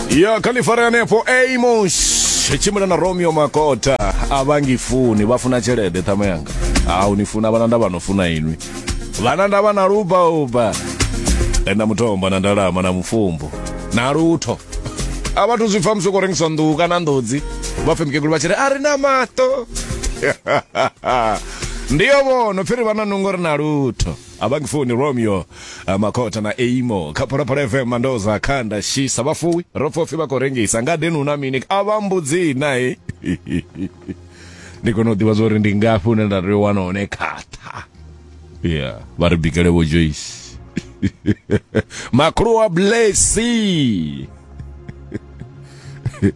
ya khalifarea anefho amos tshimbila na romeo makota a vha ngifuni vha funa tshelede ṱhama yanga a u ni funa vhana nda vha no funa inwi vhana nda vha na lubauba na mutomba na ndalama na mufumbu na lutho a vhathu zwi pfa musi u khou rengisa nḓuhu kana nḓodzi vha pfe mukegulu vha tshi ri a ri na maṱo ndiyo vhono pfhi ri vha na nungo ri na lutho abangifuni romeo ah, makota na eimo kha phalaphala fm mandoza khanda shisa vhafuwi ro pfopfi vha khou rengisa ngadeni hu na mini a vha mbudzii nae ndi kone u ḓivha zwa uri ndi ngafhi hune nda tea u wana hone khatha ya vha ri bikele vho joyce makhulu wa blessy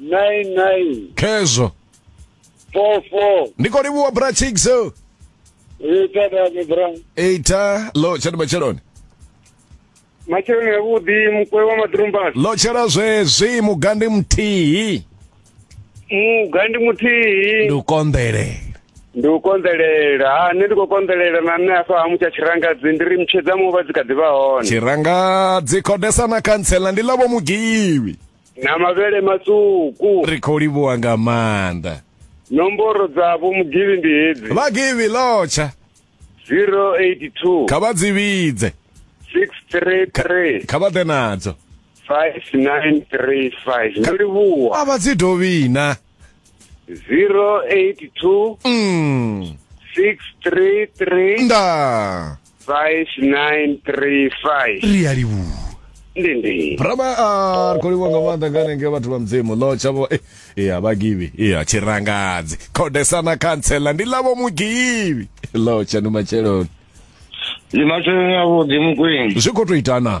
99 khezwo 44 ndi khou livhuwa bra chigso ita dame bra ita lo tshani matsheloni matsheloni avhuḓi mukwe wa maḓirumbasi lo tshela zwezwi mugandi muthihi mugandi muthihi ndi u konḓele ndi u konḓelela ha nṋe ndi khou konḓelela na nṋe afha ha mutsha tshirangadzi ndi ri mutshedza muva dzi kha ḓi vha hone tshirangadzi khodesa na khantsela ndi ḽavho mugiwi na mavhele matswuku ri khou livhuwa nga maanḓa nomboro dza vho mugivhi ndi hedzi vhagivhi lotsha 082 kha vha dzi vhidze 633 kha vha ḓe nadzo 5935 ndo livhuwa a vha dzi dovhina 082 mm. 633 nda 5935 ri a livhuwa ndi ndi brama a ri khou livhuwa nga maanḓa nga nenge vhathu vha mudzimu ḽo tshavho eh, eh, a vhagivhi eh, a tshirangadzi khodesana khantsela ndi ḽavho mugivhi ḽo tsha ndi matsheloni ndi masheleni avhuḓi mukwini zwi khou tou itana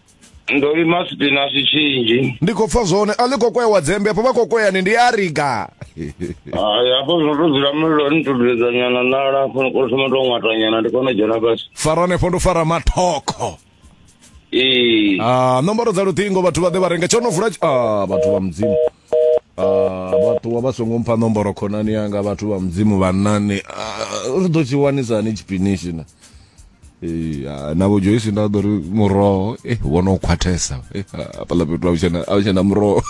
ndo lima sipinasi tshinzhi ndi khou pfa zwone a ḽi khou kwewa dzembe afho vha khou kweyani ndi a riga hayi hafho zwino to dzula mulilo ni to dudedza nyana nala afho ni kona thoma to ṅwata nyana ndi kone u dzhena fhasi fara hanefho ndo fara mathokho ee Ah, nomboro dza luṱingo vhathu vha ḓe vha renga tsho no vula tshi- ah, vhathu vha mudzimu Ah, vha ṱuwa vha songo mpha nomboro khonani yanga vhathu vha mudzimu vhanani ah, ri ḓo tshi wanisa hani tshipinishi na Eh, ah, navho joyce nda ḓo ri muroho eh, wo no khwathesa Eh, ah, hafhaḽa fhethu a hu tshena- a hu tshena muroho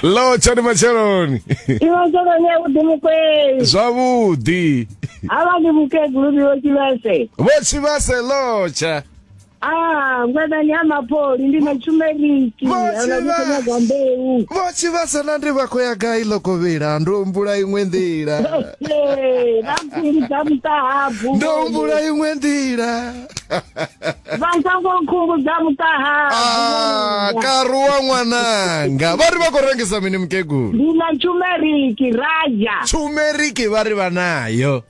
lo tshani matsheloni iwe sokonye vhuḓi mukweli zwavhuḓi havha ndi mukegulu vhiwo tshivese vho tshivhase lotsha Ah, ngwedani ya mapoli ndi matshumeriki. Vho Ana tshivha- muthenyaga mbeu. vho tshivhasa na ndi vha khou ya gai ḽo kovhela ndo humbula iṅwe nḓila Hey, vha nkhumbudza mutahabu. ndo humbula iṅwe nḓila Vha nsango nkhumbudza mutahabu. Ah, karuwa ṅwananga vha ri vha khou rengisa mini mukegulu Ndi matshumeriki, raja. tshumeriki vha ri vha nayo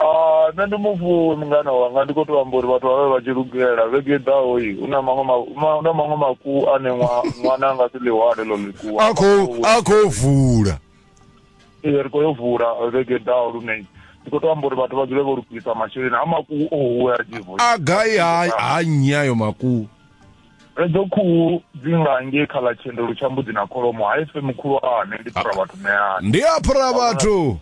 Ah, nṋe ndi mufuwi mungana wanga ndi khou tou amba uri vhathu vha vhe vha tshi lugela vhege i ḓaho i hu na maṅwe ma- ma- hu na maṅwe makuwu ane ṅwa- ṅwana a nga si ḽi hwale ḽo ḽikuwu a khou a khou vula Ee, ri khou yo vula vhege i ḓaho lune ndi khou tou amba uri vhathu vha dzule vho lugisa masheleni a makuwu o huwe a dzivo a gai ha ha nnyi ayo makuwu edzo khuhu dzi nga ngei kha ḽa tshendelo tsha mbudzi na kholomo ha ife mukhulwane ndi phura vhathu ṋeani ndi a phura vhathu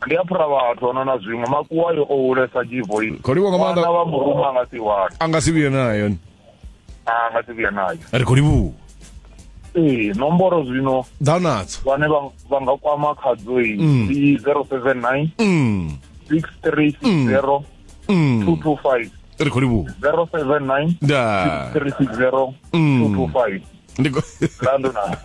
ndi a phura vhathu ano na zwiṅwe makuwa yo o hulesa dzivoi khou livhuwa nga maanḓa vhana vha murume a nga si wane a nga si vhuye nayo a nga si vhuya nayo ri khou livhuwa ee nomboro zwino ḓa nadzo vhane vha vha nga kwama khadzo iyi Mm. ndi 079 mm. 6360 Mm. 225 ri khou livhuwa 079 nda 360 225 ndi khou- Lando na.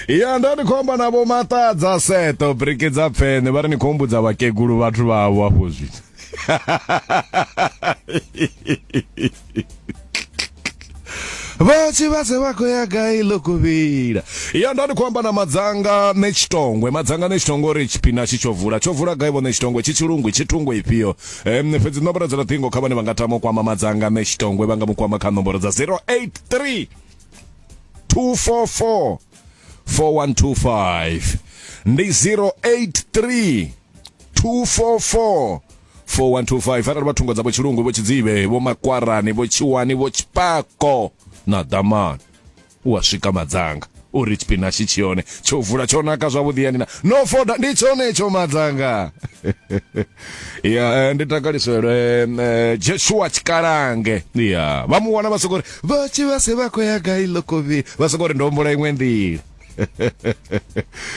ya nda ndi khou amba navho maṱadza seto briki dza pfene vha ri ni khou humbudza vhakegulu vhathu vhavho afho zwithu vha tshi vhase vha khou ya gai ḽo kuvhila ya nda ndi khou amba na madzanga ne tshitongwe madzanga ne tshitongwe uri tshipina tshi tsho vula tsho vula gai vhone tshitongwe tshi tshilungwi tshi thungo ifhio um fhedzi nomboro dza luṱingo kha vhane vha nga tama u kwama madzanga ne tshitongwe vha nga mu kwama kha nomboro dza 083 244 4125 ndi 083 244 4125 arali vha thungo dzavho tshilungu vho tshidzivhe vho makwarani vho tshiwani vho tshipako na damani u a swika madzanga uri tshipinashi tshi hone tsho vula tsho naka zwavhuḓi yani na no foda ndi tshone tsho madzanga ya eh, ndi takaliselwe em, eh, jeshua tshikalange ya vha mu wana vha soko ri vha tshi vha se vha khou ya gai lokovini vha soko ri ndombula iṅwe nḓila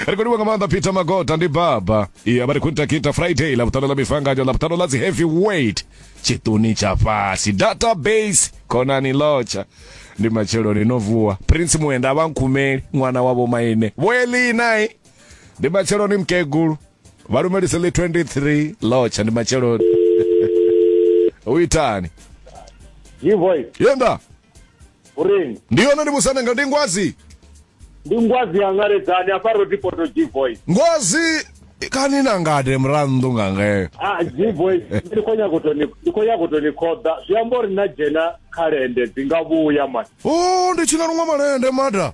ri khou livha nga maanḓa peter magota ndi baba iya vha ri khou ita kita friday ḽavhuṱanu ḽa mifanganyo ḽavhuṱanu ḽa dzi heavy weight tshiṱuni tsha fhasi database khonani lotsha ndi matsheloni no vuwa prince muenda a vha nkhumeli ṅwana wa vho maine vhoelinai ndi matsheloni mukegulu vha lumelise ḽi 23 lotsha ndi matsheloni u itani G-Voice. yenda Urini? Ndi yone ndi musanda nga ndi ngwazi. Ndi ngwazi ya ngaledzani afha ro ti poto G voice. Ngwazi kani na ngade murannḓu nga ngeo. Ah G voice ndi khou nyaga u to ni ndi khou nyaga u to ni khoḓa. Zwi amba uri na dzhena kha lende dzi nga vhuya man. Oh ndi tshi nga luṅwa malende mada.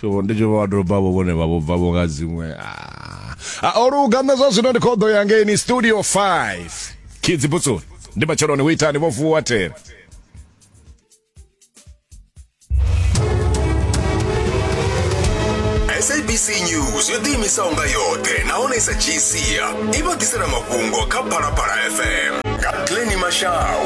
so ndi tshi vha vhatobavho vhone vha vho bvavho nga dziṅwe a ah. ah, o luga nṋe zwa zwino ndi khoḓo ya ngeini studio 5 kidzi butsoni ndi matsheloni hu itani vho vuwa thera sabc news yo ḓiimisaho nga yoṱhe nahone i sa dzhii sia i vha ḓisela mafhungo kha phalaphala fm Kathleen Mashau.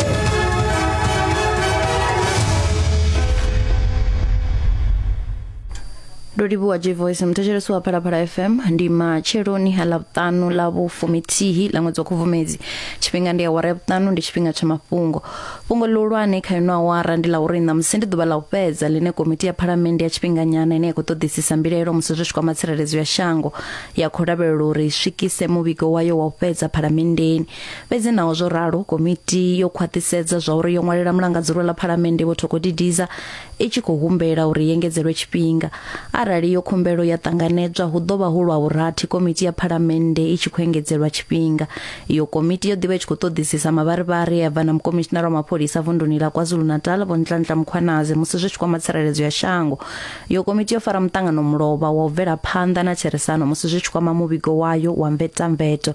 ndo livhuwa j voice muthetshelesi wa phalaphala fm ndi matsheloni ḽa vhuṱanu ḽa vhufumithihi ḽa ṅwedzi wa khubvumedzi tshifhinga ndi awara ya vhuṱanu ndi tshifhinga tsha mafhungo fhungo ḽihulwane kha ino awara ndi ḽa uri ṋamusi ndi ḓuvha ḽa u fhedza ḽine komiti ya phalamennde ya tshifhinganyana ine ya khou ṱoḓisisa mbilaelo musi zwi tshi kwama tsireledzo ya shango ya khou lavhelela uri i swikise muvhigo wayo wa u fhedza phalamenndeni fhedzi naho zwo ralo komiti yo khwaṱhisedza zwa uri yo ṅwalela mulangadzulwa ḽa phalamennde vho thokodidiza i tshi khou humbela uri yengedzelwe tshifhinga arali yo khumbelo ya ṱanganedzwa hu ḓo vha hu lwa vhurathi komiti ya phalamennde i tshi khou engedzelwa tshifhinga iyo komiti yo ḓivha i tshi khou ṱoḓisisa mavharivhari ya bva na mukomishinara wa mapholisa vunduni ḽa kwazulu-natal vho ntlantla mukhwanazi musi zwi tshi kwama tsireledzo ya shango iyo komiti yo fara muṱangano mulovha wa u bvela phanḓa na therisano musi zwi tshi kwama muvhigo wayo wa mvetamveto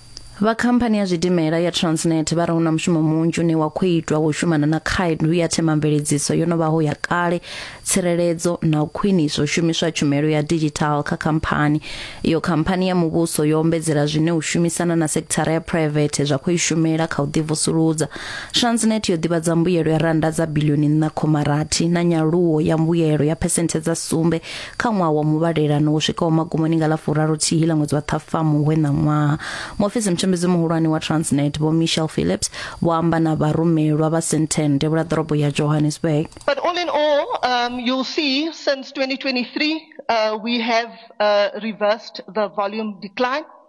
Vha khamphani ya zwidimela ya Transnet vha ri hu na mushumo munzhi une wa khou itwa wo shumana na khaedu ya themamveledziso yo no vhaho ya kale, tsireledzo na u khwinisa u shumiswa tshumelo ya digital kha khamphani. Iyo khamphani ya muvhuso yo ombedzela zwine u shumisana na sekithara ya private zwa khou i shumela kha u ḓivusuludza. Transnet yo ḓivhadza mbuyelo ya rannda dza bilioni 4.6 na nyaluwo ya mbuyelo ya phesenthe dza sumbe kha ṅwaha wa muvhalelano wo swikaho magumoni nga ḽa furaruthihi ḽa ṅwedzi wa ṱhafamu we na ṅwaha muofisi mutshembedzi muhulwane wa transnet vho michel phillips vho amba na vharumelwa vha sentend ya vhulaḓorobo ya johannesburg But all in all, um, you'll see since 2023, uh, we have uh, reversed the volume decline.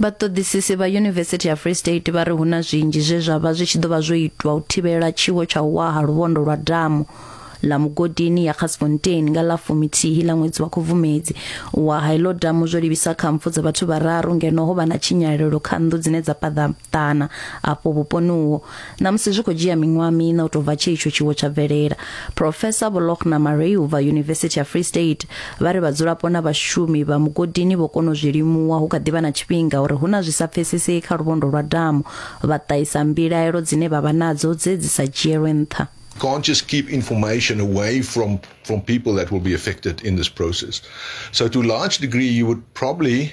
Vhaṱoḓisisi vha Yunivesithi ya Free State vha ri hu na zwinzhi zwe zwa vha zwi tshi ḓo vha zwo itwa u thivhela tshiwo tsha u wa ha luvhondo lwa damu ḽa mugodini ya Gasfontein nga ḽa fuminthihi ḽa ṅwedzi wa Khubvumedzi u wa ha iḽo damu zwo livhisa kha mpfu dza vhathu vhararu ngeno ho vha na tshinyalelo kha nnḓu dzine dza paḓaṱana afho vhuponi uho ṋamusi zwi khou dzhia miṅwaha miṋa u tou bva tshe itsho tshiwo tsha bvelela profesa volokhna mareu vha yunivesithi ya free state vha ri vhadzulapo na vhashumi vha mugodini vho kona u zwi limuwa hu kha ḓi vha na tshifhinga uri hu na zwi sa pfesesei kha luvhondo lwa damu vha ṱahisa mbilaelo dzine vha vha nadzo dze dzi sa dzhielwe nṱha can't just keep information away from, from people that will be affected in this process. So, to a large degree, you would probably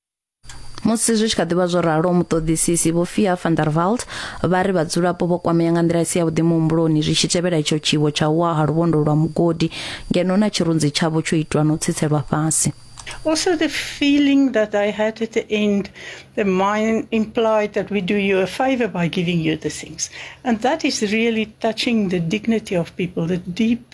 musi zwi tshi kha ḓivha zwo ralo muṱoḓisisi vho fia van der valt vha ri vhadzulapo vho kwamea nga nḓila isi yavhuḓi muhumbuloni zwi tshi tevhela itsho tshiwo tsha u wa ha luvhondo lwa mugodi ngeno na tshirunzi tshavho tsho itwa na u tsitselwa fhasi Also, the feeling that I had at the end, the mind implied that we do you a favor by giving you the things. And that is really touching the dignity of people, the deep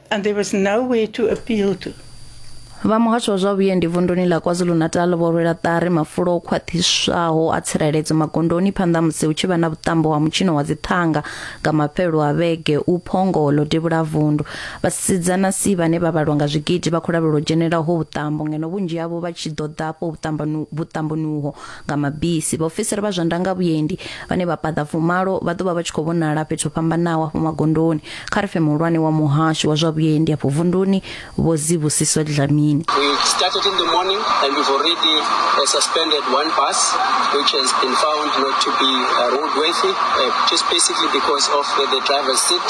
And there was no way to appeal to. vha muhasho wa zwa vhuendi vunduni ḽa kwazulu-natal vho rwela ṱari mafulo o khwaṱhiswaho a tsireledzo magondoni phanḓa ha musi hu tshi vha na vhuṱambo wa mutshino wa dziṱhanga nga mafhelelo a vhege u phongo ḽo devhula vundu vhasidzana si vhane vha vhalwa nga zwigidi vha khou lavhelela u dzhenela ho vhuṱambo ngeno vhunzhi havho vha tshi ḓo ḓa afho vhuṱambanu- vhuṱamboni uho nga mabisi. Vhaofisiri vha zwa ndangavhuendi vhane vha paḓa fumalo vha ḓo vha vha tshi khou vhonala fhethu ho fhambanaho hafho magondoni. Kharfe muhulwane wa muhasho wa zwa vhuendi afho vunduni Vho Zibusiso Dlamini. We started in the morning and we've already uh, suspended one bus which has been found not to be uh, roadworthy uh, just basically because of uh, the driver's seat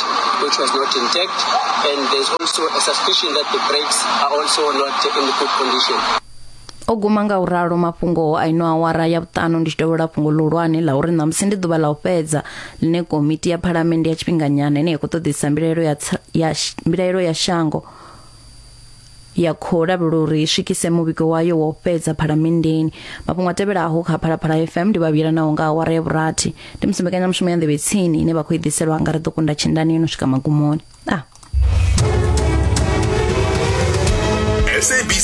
which was not intact and there's also a suspicion that the brakes are also not in good condition. o guma nga u ralo mafhungo a ino awara ya vhuṱanu ndi tshi dovhela fhungo ḽihulwane ḽa uri ṋamusi ndi ḓuvha ḽa u fhedza ḽine komiti ya phalamennde ya tshifhinganyana ine ya khou ṱoḓisa mbilaelo ya, tsa- ya, sh- mbilaelo ya shango ya khou lavhelela uri i swikise muvhigo wayo wa u fhedza phalamenndeni mafhungo a tevhelaho kha phalaphala fm ndi vhavhila naho nga awara ya vhurathi ndi musi mbekanyamushumo ya nḓevhe tsini ine vha khou i ḓiselwa nga ri ḓo kunda tshindani yo no swika magumoni ah. sabc